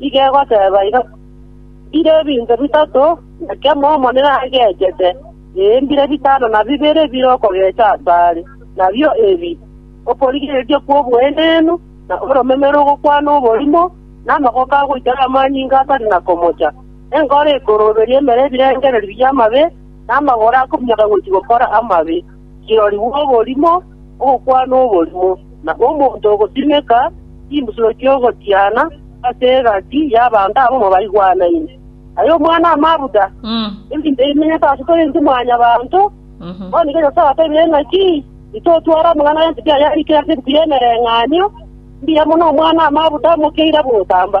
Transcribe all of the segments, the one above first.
Nigo egoteba iga, Mbire ebinto bitato, na kemo Omonene agechete, ee, mbire bitano na bibere bire okogecha asare, nabio ebi, okorigereria kw'oboenenu, na oromeme rogokwana oborimo, na amagoko agoitera amanyinga atari na komocha, enkoro ekorooberia emere ebirengererio bi'amabe, na amagoro akominyoka gochia gokora amabe. kirorigwe oborimo, ogokwana oborimo, na omonto ogosimeka chimbusuro chi'ogotiana ase egati y'abanto abwo mobaigwanaine. Aye Omwana-o-Mabuda, ebinto ebi bimenyete ase tore intwe Mwanyabaanto, bono igo Nyasae atebirie ng'aki, Titotwara amang'ana a Nyasae ayarikire ase ebuku y'emereng'anio, mbuya mono Omwana-o-Mabuda amokeire abw'ogotamba.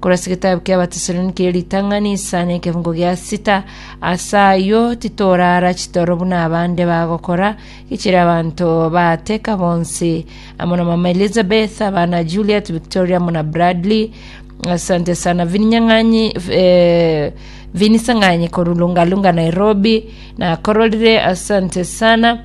Korwa ase egetabu ki'Abatesaloniki erio ritang'ani isano na ekefongo gia sita, Ase ayio titoraara chitoro buna abande bagokora, gechire abanto baateka bonsi, amo na mama Elizabeth, abana Juliet, Victoria, amo na Bradley. Asante sana Vininyang'anyi, eh, Vinisang'anyi korwa Lungalunga, Nairobi. Nakororire, asante sana.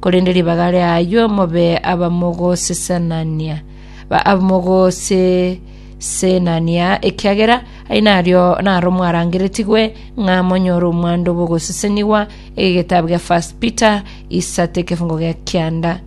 korende ribaga riayio mobe abamogosesenania, ba- abamogosesenania, ekiagera ai nario naro mwarangeretigwe ng'a monyore omwando bw'ogosesenigwa, egetabu gia First Peter isatu ekefungo gia kianda.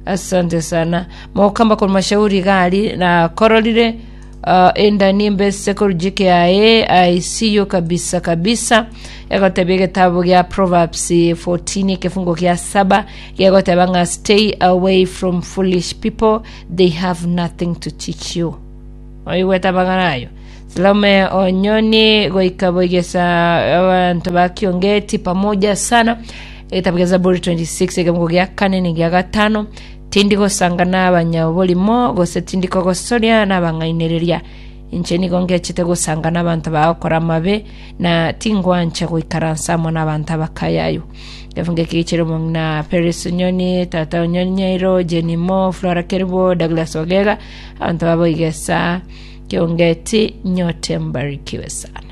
Asante sana. Mokamba korwa mashauri gari nakororire Ah, enda nimbese korujia kiaye, I see you kabisa kabisa. Egotebia egetabu gia Proverbs 14 ekefungo gia saba gegoteba ng'a stay away from foolish people, they have nothing to teach you. Oigwete amagana ayo. Salome Onyoni goika boigesa abantu ba Kiongeti pamoja sana. Egetabu gia Zaburi 26 ekefungo gia kane ni gia gatano Tindi gosanga nabanyaborimo, gose tindi kogosoria nabang'ainereria. Inche nigo ngechete gosanga nabanto bagokora amabe, na tingwancha goikaransa amo nabanto abakayayu. Ekefu nge kigichire omong'ina Peris Onyoni, tata Onyoni Nyairo, Jane Mo, Flora Kerubo, Douglas Ogega, abanto baboiga esaa. Kiongeti, nyote mbarikiwe sana.